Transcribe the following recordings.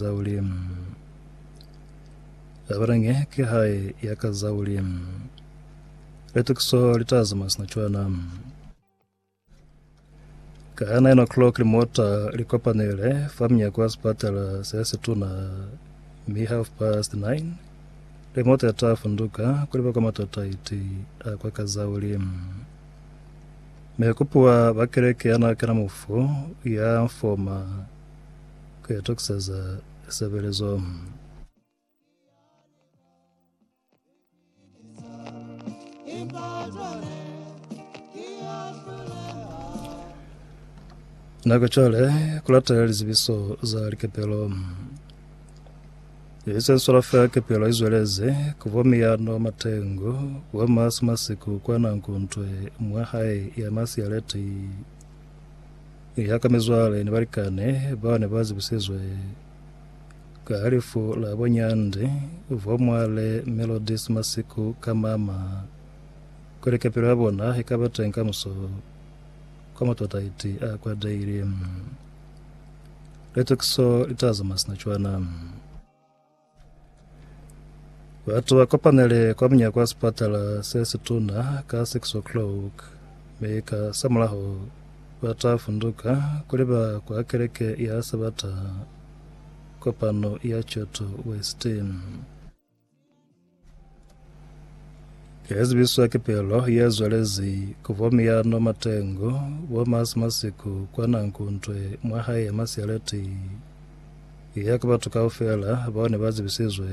za Ulimu. Zabalange ki hae ya ka za Ulimu. Litukiso li ta zama sina cwana. Ka 9 o'clock limota li kopanele fa mnyako wa sipatala se se tuna mi half past 9 limota ya ta funduka kuliba kwa matota iti a kwa ka za Ulimu. Me kupuwa ba keleke ya na kena mufu ya mfoma Ku itokisa za lisebelezo. Nako cwale ku latela lizibiso za likepelo. Ye se sola fela kepelo i zweleze ku bo miyano matengu bo masi masiku kwa nanku ntwe mwa hae ya masi ya leti Ni haka mizwale ni balikani bao ne ba zibisizwe ka halifu la bunyandi bwa Mwale Melodies masiku ka mama, kuli kapelo ya bona i ka ba teñi kamuso kwa matwataiti a kwa daily. Litukiso li ta zama sina cwana. Batu ba kopanele kwa munyako wa sipatala se situna ka 6 o'clock, mi ka samulaho ba ta funduka kuli ba kwa keleke ya Sabata kopano ya Choto West. Ezibiswa ki pelo yezwelezi ku bo Miyano Matengo, bo Masi Masiku kwa Nankuntwe mwa hae ya Masialeti, ya ku batu kaufela bao ne ba zibisizwe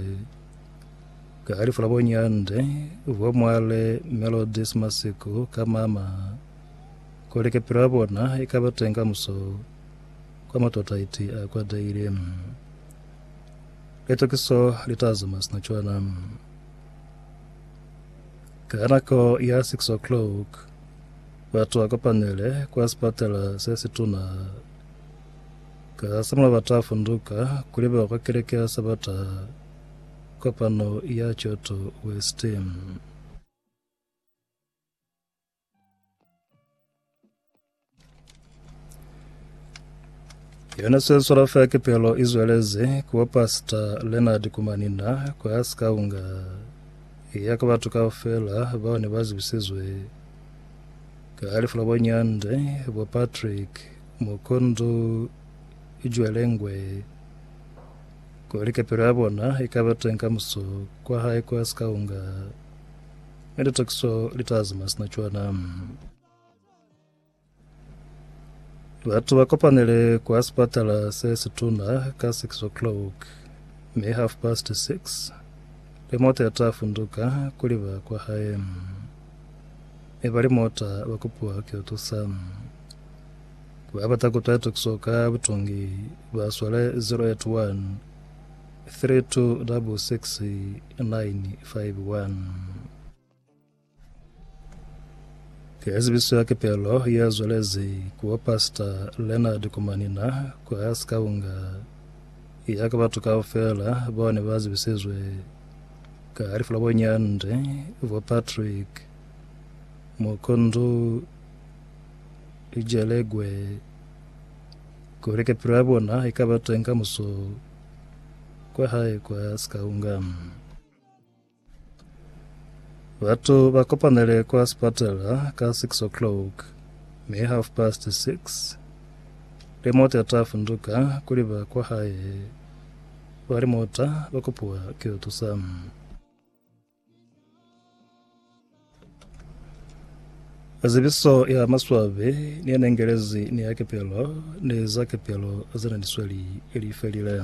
ka lifu la bo Nyande, bo Mwale Melodies Masiku ka mama, kuli kepilo ya bona ikaba teñi kamuso kwa matotaiti a kwatehile. Litokiso li ta zuma sina cwana. Ka nako ya 6 o'clock, batu ba kopanele kwa sipatela se situna. Ka samula ba ta funduka kuli ba kwa keleke ya Sabata kopano ya Kyoto West. yona sweswela fa kepelo i zweleze kuwa pastor leonard kumanina kwa ya sikaunga ya ka batho kao fela bao ne ba zibisizwe ka halifu la bonyande bo patrick mokondo ijwelengwe kwa likepelo ya bona e ka ba teng ka muso kwa hae kwa sikaunga Mi litakiso litazi mwa sina cwana. Batu ba kopanele kwa sipatala se situna ka 6 o'clock mi half past 6 le mota ya ta funduka kuli ba kwa hae mi bali mota ba kopiwa ki tusa ba bata kutwa litakiso ka butongi ba swale 081 326695 Ke zibiso ya kepelo ye zwelezi ku bo Pastor Leonard Kumanina kwa Sikaunga ya ka batu kaufela bao ne ba zibisizwe ka lifu la bo Nyande, bo Patrick Mukundu Jelegwe, kuli kepelo ya bona i ka ba teñi kamuso. kwa hae kwa Skaungamu. Batu ba kopanele kwa sipatala ka 6 o'clock mi half past 6 limota ta funduka kuli ba kwa hae ba limota ba kopiwa ki yo tusa. Zibiso ya maswabi ni ya nengelezi ni ya kepelo ni za kepelo zena ni sweli li felile.